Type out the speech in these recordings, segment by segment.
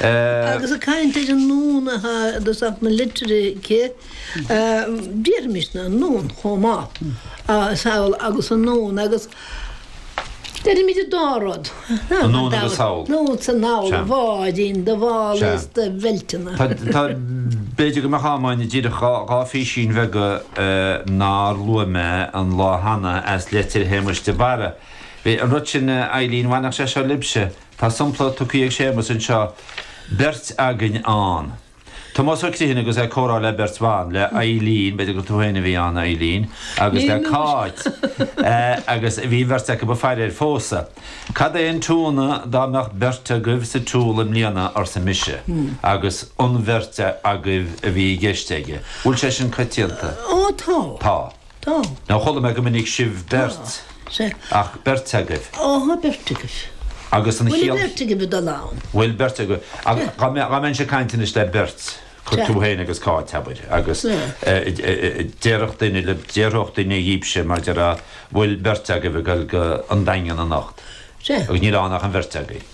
Agus an chaint ar an ndomhan atá i dtosach na litreacha, déarfaimisne an ndomhan chomh maith, samhail agus an ndomhan agus deirimid an dá rud, an ndomhan agus samhail, ndomhan sa namhaid, do bháidín, do bhall is do bheilteanna. Tá, b'fhéidir go mbeadh an t-am againn díreach dhá phísín bheaga nár luaigh mé an lá cheana as litir Shéamais de Barra. An rud sin, a Eileen, bhainfeadh sé seo libhse? Tá sompla tugtha ag Séamas anseo, 'Beirt agaibh ann. Tomás Ó Criomhthain agus é ag comhrá le beirt bhan, le Eileen, b'fhéidir gur tú féin a bhí ann, a Eileen, agus le Cáit, agus bhí an bheirt acu ag faire ar phósadh. 'Cad é an t-ionadh dá mbeadh beirt agaibh sa tsiúl i mbliana, arsa mise, agus an bheirt agaibh a bhí i gceist aige. Bhfuil sé sin coitianta? Ó, tá. Tá. Tá. Níor chuala mé go minic sibh beirt, ach beirt agaibh. Áha, beirt agaibh. Agus an chiall? Bhfuil beirt agaibh ag dul ann? Bhfuil beirt agaibh. Ach dá mbeinnse ag caint anois le beirt, cuir tú féin agus Cáit, abair, agus déarfadh duine le, déarfadh duine dhíbse, mar déarfá, an bhfuil beirt agaibh ag dul go An Daingean anocht? Agus níl ann ach an bheirt agaibh.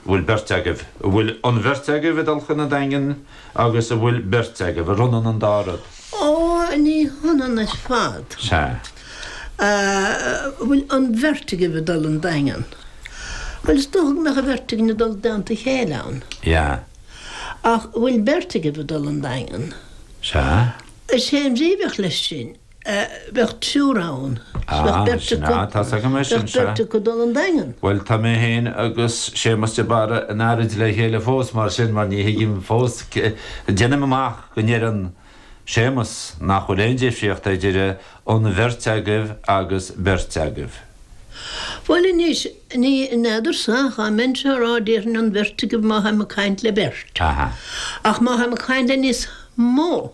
an bhfuil beirt agaibh, an bhfuil an bheirt agaibh ag dul chun an Daingin agus an bhfuil beirt agaibh, an ionann an dá rud? Ó, ní hionann ar fad. Sea. An bhfuil an bheirt agaibh ag dul 'on Daingean. Bhuel, is dócha go mbeadh an bheirt againn ag dul i dteannta a chéile ann. Sea. Ach, an bhfuil beirt agaibh ag dul 'on Daingean. Sea. Is é an bhrí a bheadh leis sin. bheadh triúr ann, 's bheadh beirt acu, bheadh beirt acu dul 'on Daingean. Bhuel, tá mé féin agus Séamas de Barra in earraid le chéile fós, mar sin, mar ní thuigim fós, deinim amach go ndeireann Séamas nach bhfuil aon difríocht idir an bheirt agaibh agus beirt agaibh. Bhuel anois, ní fheadarsa, dá mbeinnse á rá, déarfainn an bheirt agaibh má táim ag caint le beirt, ach má táim ag caint le níos mó,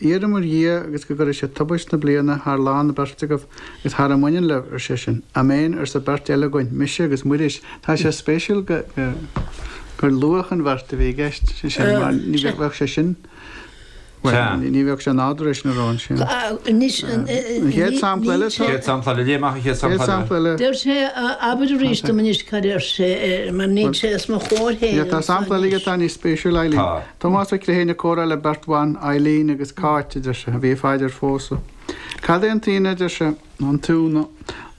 Iarraim ar Dhia agus go gcuirfidh sé tubaist na bliana thar lámha na beirte agaibh agus thar a mbaineann libh, ar seisean. Améin, arsa an bheirt eile againn, mise agus Muiris. Tá sé spéisiúil gur luadh an bheirt a bhí i gceist, deir sé, mar ní bheadh sé sin, bhuel, ní bheadh sé nádúrtha leis ná luafaí sin. An chéad sampla eile, tá? An chéad sampla eile, léigh amach an chéad sampla eile. An chéad sampla eile. Deir sé, abair arís dom anois cad a deir sé, mar níl sé os mo chomhair féin. Tá sampla eile aige atá níos spéisiúla, a Eileen. Tá. Tomás Ó Criomhthain ag comhrá le beirt bhan, Eileen agus Cáit, a deir sé, a bhí ag faire ar phósadh. Cad é an t-ionadh, a deir sé, nó an t-iúnadh,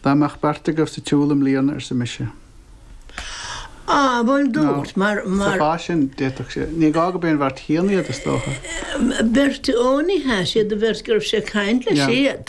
dá mbeadh beirt agaibh sa tsiúl i mbliana, arsa mise. Á, bhuel, dúirt, mar, mar. Sa chás sin, d'fhéadfadh sé. Ní gá gurb é an bheirt chéanna iad, is dócha. Beirt, ó, ní hea, siad an bheirt go raibh sé ag caint leis, iad.